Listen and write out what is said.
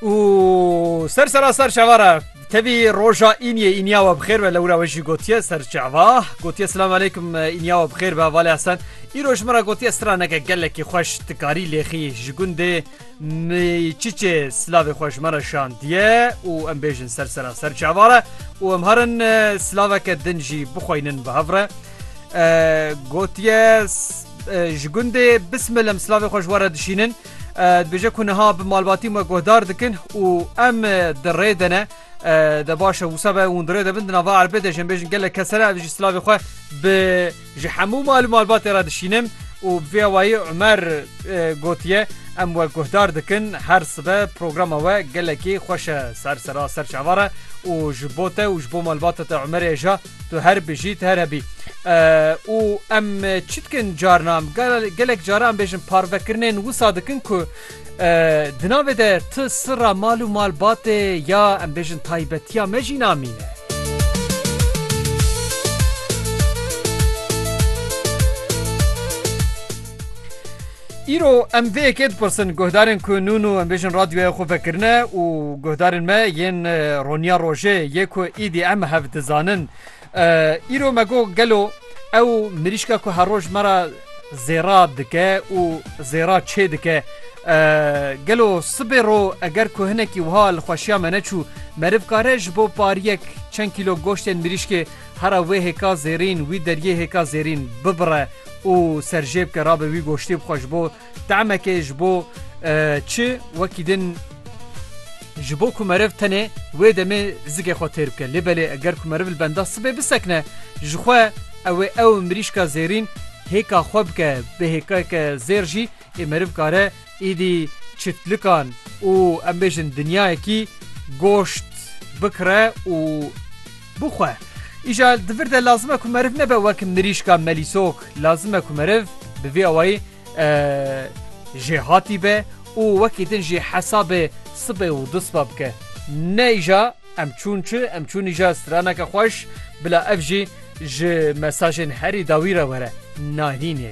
û ser sera ser şeva re tevî roja îniyê îniya we bixêr be lewra we jî gotiye ser çava gotiye silam aleykum îniya we bixêr be valê hesen îro ji min re gotiye straneke gelekî xweş tikarî lêxî ji gundê çiçê silavê xwe ji me re şandiye û em bêjin ser sera ser çava re û em herin silaveke din jî bixweynin bi hev re gotiye ji gundê bismilem silavê xweş were dişînin Dibêje ku niha bi malbatî me guhdar dikin û em di rê de ne de baş e wisa be hûn dirê debin di nava erbê de jin bêjin gelek kesere ev jî silavê xwe bi ji hemû mal û malbatê re dişînin û vê awayî Umer gotiye em we guhdar dikin her sibe programa we gelekî xweş e ser sera ser çavare û ji bo te û ji bo malbata te Umerê ja Tu her bijî tu here bî. û em çi dikin carna em gelek cara em bêjin parvekirinên wisa dikin ku di navê de tu sira mal û malbatê ya em bêjin taybetiya me jî namîne. Îro em vê yekê dipirsin guhdarên ku nûn û em bêjin radyoya xwe vekirine û guhdarên me yên roniya rojê yê ku îdî em hev dizanin. Îro me got gelo ew mirîşka ku her roj me ra zêra dike û zêra çê dike. Gelo sibê ro eger ku hinekî wiha li xweşiya me neçû meriv kare ji bo pariyek çend kîlo goştên mirîşkê Hera wê hêka zêrîn wî deryê hêka zêrîn bibire û serjêbike rabe wî goştê bixwe ji bo temekê ji bo çi wekî din ji bo ku meriv tenê wê demê zikê xwe têr bike lê belê eger ku meriv li benda sibê bisekine jixwe ewê ew mirîşka zêrîn hêka xwe bike bi hêkeke zêr jî ê meriv kare êdî çitlikan û em bêjin dinyayekî goşt bikire û Bixwe. Îja di vir de lazim e ku meriv nebe wek mirîşka melîsok. Lazim e ku meriv bi vê awayî jêhatî be û wekî din jî hesabê sibê û du siba bike. Ne îja em çûn çi, em çûn îja straneke xweş, bila ev jî ji mesajên herî dawî re were. Nayînê.